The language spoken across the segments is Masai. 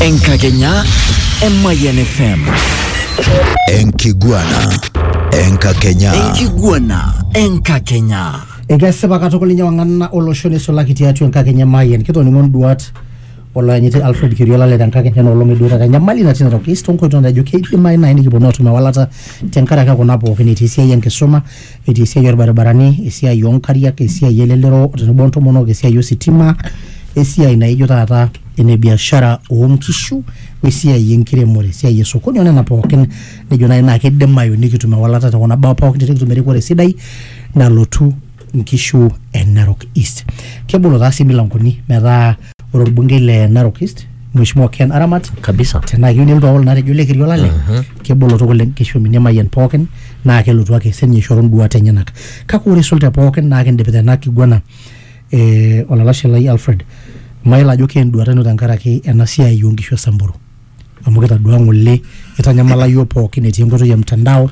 Enkakenya Emayian FM. Enkiguana. Enkakenya. Enkiguana Enkakenya. Ekesipa katukul ninye wang'ana olosho neisulaki tiatua enkakenya Mayian. Kitoning'o nduat olooyanyiti Alfred Kiriola le tenkakenya ena olong eduata enyamali natii ina toki toonkoitoi naijo keidimayu naaji nikiponu aatum ewalata tenkaraki kuna pookin etii esiai enkisuma etii esiai orbaribarani, esiai onkariak, esiai elelero tenebo ontomonok, esiai ositima, esiai naijo taata ene biashara onkishu, wesiai enkiremore, esiai esokoni onena pookin nijo nai naa kidimayu nikitum ewalata tekuna baa pookin tenikitum erikore sidai nalotu nkishu e Narok East. Kebolo taa sii milankoni metaa ore orbungei le Narok East Mheshimiwa Ken Aramat kabisa tenaa keyieu nelotu awol natejo le Kerio Lale kebolo tukul enkishomi nemayian pookin naa kelotu ake sininye aishoru nduat enyenak kake ore eisul te pookin naa kindip tena kiguana eh, olalashe lai Alfred mayiolo ajo keenduata ino tenkaraki ena siai oonkishu e Samburu. amu kitadua ng'ole itanyamala iyiook pookin etii enkoitoi e mtandao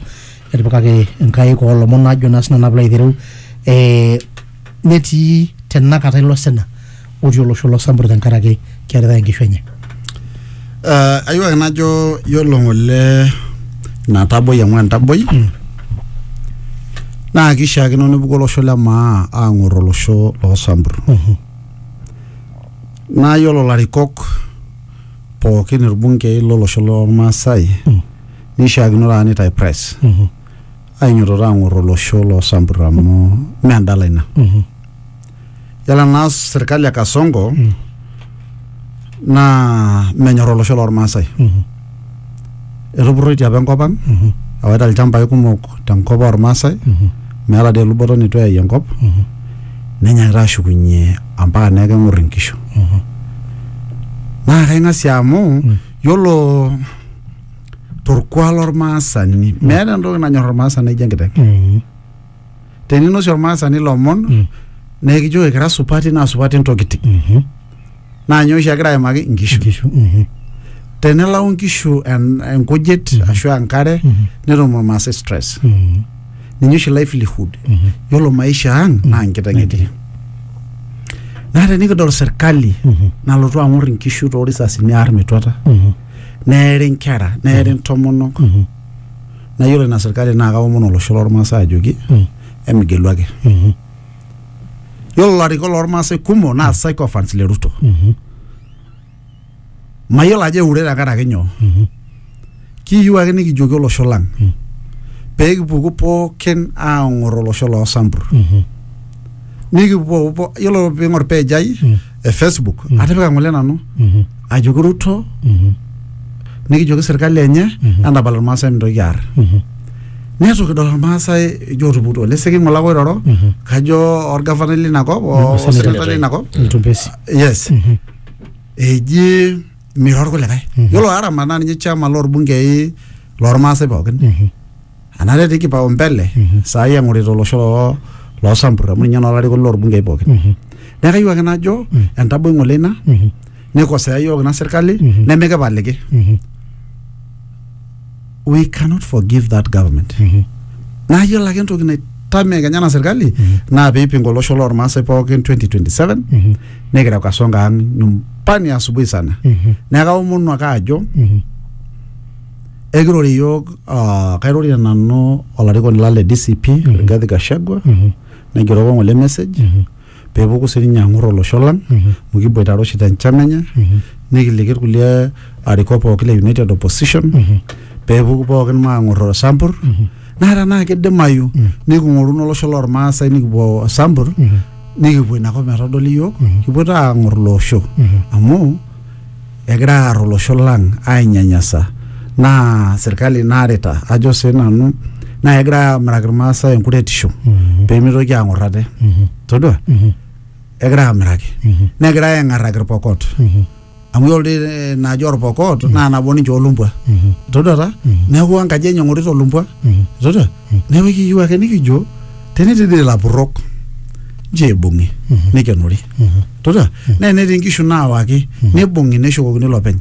etipikaki inkaik oolomon ajo naa sinanu piilo aitereu eh, netii tenakata ilo sina otii olosho lo Sambur tenkaraki kearitae inkishu enye. Uh, ayieu ake najo yiolo ng'ole ina taboi amu entaboi mm. naa kishiakino nepuku olosho le maa aang'or olosho loo Sambur mm -hmm. naa yiolo larikok pookin irbungei lolosho lormaasai mm. neishiakino taa nitae press mm -hmm. ainyototo ang'or olosho loo sampur amu mm. mee endala ina mm -hmm. yala naa sirkali e kasongo mm. naa menyor olosho lormaasai mm -hmm. etupurroitie apa enkop ang mhm. ewaita ilchambai kumok tenkop ormaasai mhm. meeta dii eluboto nitu eyai enkop mhm. nenyaakita ashukunye ampaka neeku keng'or inkishu naa kaing'asie amu mm. yiolo torkuak lormaasani meeta entoki nanyor ormaasani naijo enkiteng teninosie ormaasani lomon Mm. naa ekijo ekira supati naa supati ntokitin Mhm. naa nyoo oshi egira aimaki inkishu Nkishu. Mhm. tenelau inkishu en- enkujit Mhm. ashu enkare Mhm. netum ormaasai stress Mhm. ninye oshi livelihood Mhm. yiolo maisha ang naa nkiteng etii naa tenikidol serkali Mhm. nalotu ang'or inkishu toorisasini aar metuata Mhm. neeri inkera neeri intomonok Mhm. Naa yiolo ina sirkali naa kaomon olosho lormaasai ajoki Mm. emigelu ake. Mhm. Yiolo ilarikok lormaasai kumok naa sycophants le Ruto. Mhm. Mayiolo ajo eure tenkaraki nyoo. Mhm. Kiyieu ake nikijoki olosho lang Mm. pee kipuku pookin aang'or olosho loo sambur. Mhm. Nikipuo yiolo piing'or page ai Mm. e Facebook Mhm. atipika ng'ole nanu Mhm. ajoki Ruto Mhm. nikijoki serkali enye Mhm. entapal irmaasai mintoki aar Mhm. neitu kidol irmaasai ijo otuputuo leseki ng'ole ake oiroro Mhm. kajo orgavanai lina kop o- Mhm, oseneta lina kop Mtumbesi. yes Mhm. eji miro irkulikae Mhm. yiolo aramat naa ninye chairman loorbungei lormaasai pookin Mhm. anaa etii kipaumbele saai eng'orita olosho loo loosampur amu ninye naa olarikoni loorbungei pookin Mhm. neeku kayieu ake najo Mhm. entaboi ng'ole ina Mhm. nikosea iyiook ina sirkali Mhm. nemikipaliki Mhm. we cannot forgive that government Mhm. naa yiolo ake entoki naitamie kenya ena sirkali Mhm. naa piipinga olosho lormaasai pookin 2027 Mhm. nikireu kasonga ang nyumbani asubuhi sana Mhm. neeku kaomonu ake ajo Mhm. Ekirore iyiook uh, kairorita nanu olarikoni lang le DCP mm -hmm. Rigathi Gachagua mm -hmm. naigeroko ng'ole message mm -hmm. peepuku sininye ang'or olosho lang mm -hmm. amu kiboitare oshi tenchama enye mm -hmm. nikiliki irkulie arikok pooki le United Opposition mm -hmm. peepuku pookin maang'or osampur mm -hmm. naa tenaa kidimayu mm -hmm. niking'oruno olosho lormaasai nikipuo osampur mm -hmm. nikipuo inakop metodoli iyiook mm -hmm. kipuo taa ang'or ilo osho mm -hmm. amu egira aar olosho lang ainyanyasa naa serkali naarita ajo sii nanu naa kegira aamiraki irmaasai enkuretisho peemitoki aang'or ate todua egira aamiraki negira aeng'arraki irpokot amu yiolo doi eh, naaji orpokot naa nabo ninche olumbwa todua ta neeku enkaji enye eng'orita olumbwa todua neeku ekiyieu ake nikijo tenetii dii ilapurrok nchoo eibung'i neikenori todua naa enetii inkishu naawaki neibung'i neshukokini ilopeny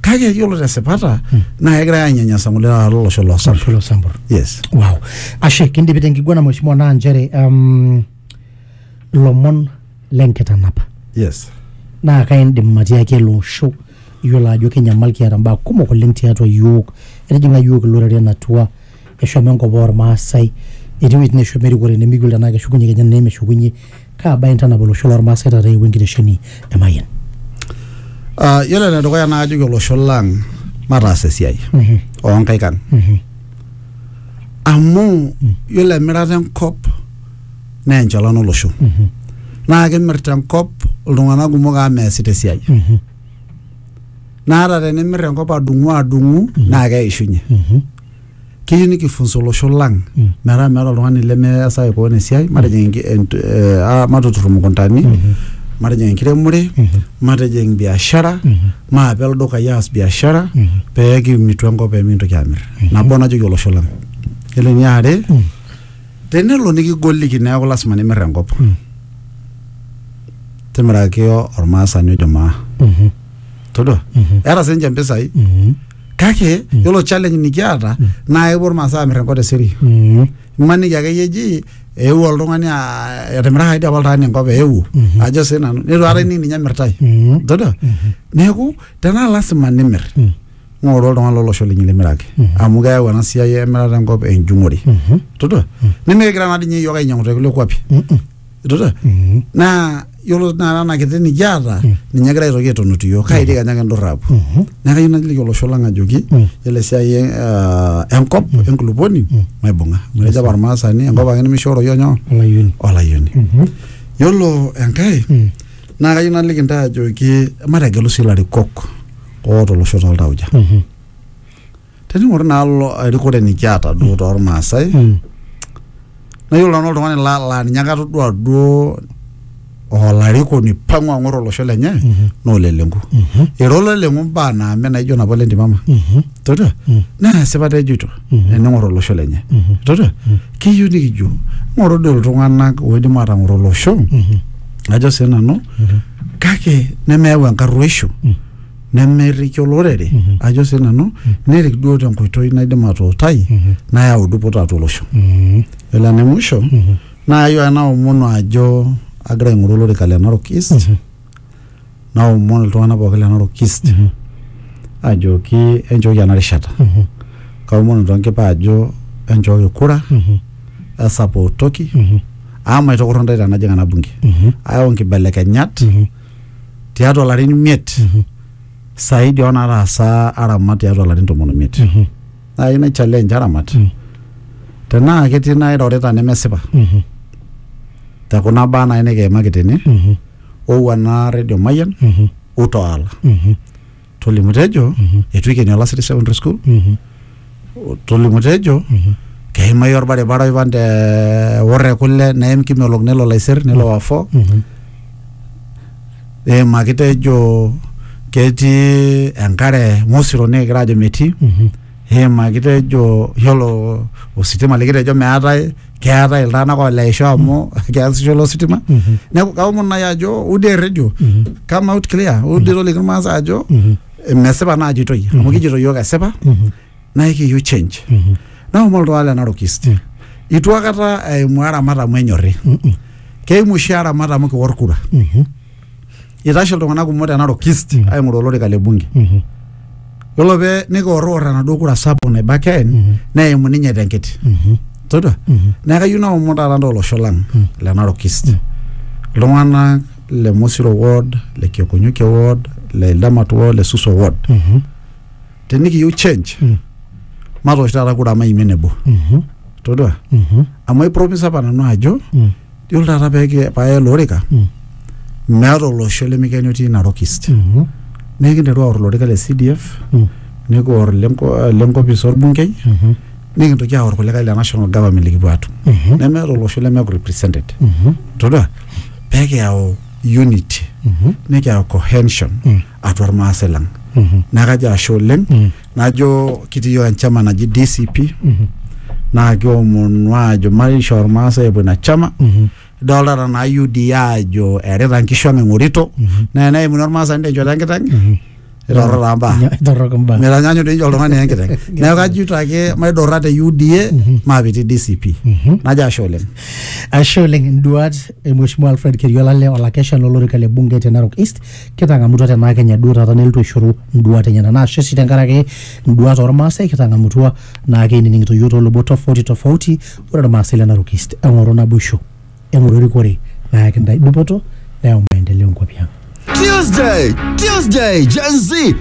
kake yiolo tesipata naa kegirai aanyanyasa ng'ole taata lolosho loo Sam Olosho loo Sambur. yes Wow. Ashe kindipi tenkiguana mheshimiwa naa nchere um, lomon lenkitanapa yes naa kaindim matiaki ele osho iyiolo ajo kenyamal kiata mbaa kumok oleng tiatua yiok etijing'a yiok iloreren atua eshomo enkop ormaasai etii wuejitin neshomo erikore nemikiul tenaa keshukunye kenya tenaa meshukunye kaa bae intanap olosho lormaasai taata eewuo enkitesheni e Mayian Uh, yiolo enedukuya naa kajoki olosho lang mataas esiai onkaik ang amu yiolo emirata enkop naa enchalan olosho naa kimirta enkop iltung'anak kumok amu meesita esiai naa ata tenimirr enkop adung'u adung'u naa keishunye keyieu nikifunza olosho lang Mm. metaa meeta oltung'ani lemeasaki koon esiai matijing enki- ent- eh, ah, matutur imukuntani Mhm. matijing enkiremore Mhm. matijing biashara Mhm. maape ildukai aas biashara Mhm. pee kimitu enkop pee mikintoki amir nabo najoki olosho lang yiolo eniare Mm. tenelo nikigoliki neeku lasima nimir enkop Mm. timiraki ormaasani ojo maa Mhm. todua Mhm. eeta sininche mpisai Mhm. kake yiolo challenge nikiata naa epuo irmaasai aamir enkop tesiri Mm. imaniki akeyie eji eewuo oltung'ani aa- etimirakaki dii apa oltung'ani enkop eewuo ajo sii nanu neitu aikata ening ninye emirtai Mm. todua neeku tenaa lasima nimir Mm. ng'oru oltung'ani lolosho linyi limiraki amu keyau ena siai emirata enkop enjung'ore todua nimikigira naa dii ninye iyiook ainyang'u tekulie kuapi Mm-mm. idote Mhm. naa yiolo naa ena kiti nikiata Mm. ninye egira aitoki aitonut iyiook kaiti kenya kindurrapu Mhm. neeku kayieu naliki olosho lang ajoki Mm. yiolo esiai e- ah, enkop enkulupuoni Mm. maibung'a amu etejo apa ormaasani enkop ake nemishooroyio nyoo olayioni olayioni Mhm. yiolo enkae Mm. naa kayieu naliki intae ajoki mategelu sii ilarikok oota olosho toltauja Mhm. tening'or naa lo erikore nikiata duo tormaasai Mm. naa yiolo nanu oltung'ani laa laa ninye ake atodua duo olarikoni pang'u ang'or olosho lenye naa ole lenku Mhm. era ole lenku mbaa naame naijo napa ole ntimama Mhm. todua Mm. naa esipata ejoito Mhm. ening'or olosho lenye Mhm. todua keyieu nikijo ng'oro doi iltung'anak oidim atang'oro olosho Mhm. ajo sii nanu kake nemeyau enkarruoisho Mm. nemeriki olorere Mhm. ajo sii nanu Mhm. nerik duo tenkoitoi naidim atuutai Mhm. nayau dupoto atua olosho Mhm. elo ene musho Mhm. naa ayieu ake naomonu ajo agira aing'oru olorika le Narok East Mhm. naomonu iltung'anak pookin le Narok East Mhm. ajoki enchooki ena rishata Mhm. kaomonu tonkipa ajo enchooki kura Mhm. esapootoki Mhm. amu maitokorro ntae tenajing ena bunge Mhm. ayau nkibelekenyat Mhm. tiatua larin imiet saidi oo nataasa aramat tiatua larin tomon oimiet naa keyieu nai challenge aramat tenaa ketii nairorita nemesipa te kuna baa nai nikiimaki tene owuan naa redio mayian utoala tolimu tejo Mhm. eitu ikeni olasiri secondary school Mhm. tolimu tejo Mhm. keimai orbaribara oipan te worre kule neim kimelok nelo laiser nelo wafo Mhm. eimaki tejo ketii enkare mosiro nikigira ajo metii Mhm. eimaki tejo yiolo ositima likitejo meetae keetae iltung'anak oleisho amu keasisho ilo sitima neeku kaomon naaji ajo udi erredio come out clear udi toliki irmaasai ajo mesipa naa ajitoi amu kijito yiok esipa naa ekiyieu change naomon iltung'anak le Narok East itu akata eimu aramat amu enyorri keimu oshi aramat amu kiwor kura itashe iltung'anak kumok te Narok East Mm. aing'oru olorika le bunge Mhm. yiolo pee nikiorrior enaduo kura sapuk naiba Ken Mhm. neimu ninye tenkiti Mhm. todua Mhm. neeku kayieu naomon taata ntae olosho lang Mm. le Narok East Mm. iltung'anak le Mosiro ward le Kiokonyukie ward le Ildamat ward le Suso ward Mhm. tenikiyieu change Mm. matoosh taata kura maimie nebo Mhm. todua Mhm. amu aipromise apa nanu ajo Mm. Yiolo taata pee paya ele orika Mm. meeta olosho lemikeni otii Narok East. Mhm. Neeku kinteru aor olorika le CDF, Mm. nikior lenko- lenkopis orbungei, Mhm. nikintoki aor kulikae le national government likipuo aatum. Mhm. Nemeeta olosho lemeeku represented. Mhm. Todua pee kiyau unity, Mhm. nikiyau cohesion Mm. atua irmaasai lang. Mhm. Neeku kajo ashe oleng. Mm. najo kitii yiok enchama naji DCP naa kiomonu aajo maishoo irmaasai epuo ina chama idolta tenaa UDA aajo eerita nkishu ang eng'orito naa eneimuni ormaasani tenchoto enkiteng itorro taa mbaa Torrok imbaa. mitanyaanyuk doi ninye oltung'ani enkiteng neeku kajito ake maidurra te UDA maapitii DCP najo ashe oleng Ashe oleng induat e Mheshimiwa Alfred Keriolale olakeshani lolorika le bunge te Narok East kitang'amutua tenaa kenya duo taata nelotu aishoru nduat enyena naa ashe sii tenkaraki nduat ormaasai kitang'amutua naa keinining'ito yiok toolubot tofauti tofauti ore irmaasai le Narok East eng'oru naboisho eng'oru erikore nayaki ntae dupoto neyau maendeleo nkuapi ang Tuesday, Tuesday, Gen Z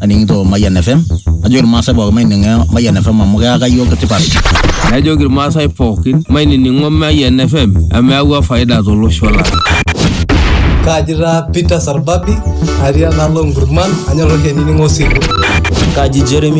aning'ito Mayian FM najoki irmaasai pookin maining'o Mayian FM amu keyaka iyiook tipat. Najoki irmaasai pookin mainining'o Mayian FM amu eyawua faida tolosho lang. Kaaji taa Peter Sarbabi atii enaalo Nkurman anyor oshi ainining'o Osiligi. Kaji Jeremy